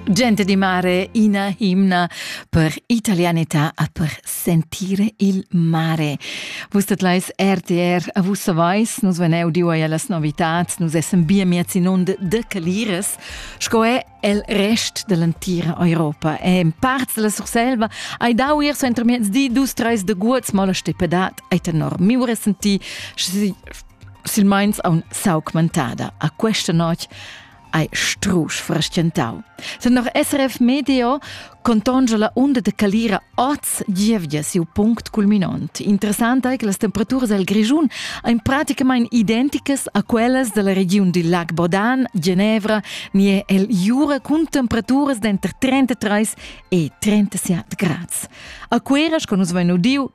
Gente di mare, ina himna per italianità e per sentire il mare. Vus tetlais RTR a vus savais, nus veneu diu ai las novitats, nus essem bia miez in und de Caliras, sco è el rest dell'entira Europa. E in parts della Surselva hai dau ir so entro miez di dus treis de guots, ma la steppedat ai tenor miu resenti, silmeins aun s'augmentada a questa notg hai strusch frestgentau. Sen noch SRF Medio contongia la unda de calira oz gievgia siu punct culminont. Interessant ei che las temperaturas el Grischun ein praticamain identicas a quellas della regiun di Lac Bodan, Genevra, nie el Jura cun temperaturas denter 33 e 37 grads. A Queras, con nus vein udiu,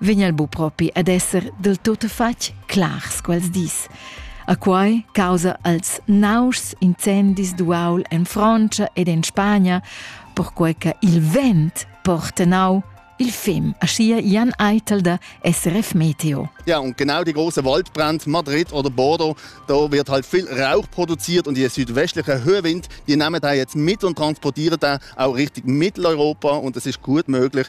vegn el bu propi ad esser del tutfatg clars quels dis. A quai causa als nauschs incendis d'uaul en Francia ed en Spagna, perquai che il vent porta nau il fem, aschia Jan Eitel der SRF Meteo. Ja, und genau die große Waldbrand Madrid oder Bordeaux, da wird halt viel Rauch produziert und die südwestlichen Höhwind, die nehmen da jetzt mit und transportieren da auch richtig Mitteleuropa und es ist gut möglich,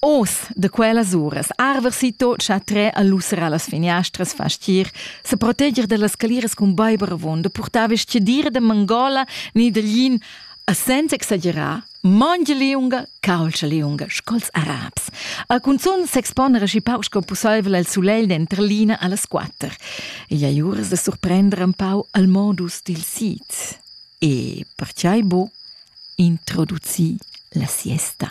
Oz da quellas uras arver si tot cha trer a lusser allas finiastras fastir, se proteger dellas caliras cun baiber avon da purtar vestidira da mangola ni da lin, a senza exagerar, mongia liunga, caulscha liunga sco'ls arabs. A cunzun s'expona aschi pauc sco pusseivel al sulegl denter l'ina allas quatter. Igl ei uras da surprender un pau al modus dil sit. E, per tgei bo, introduci la siesta.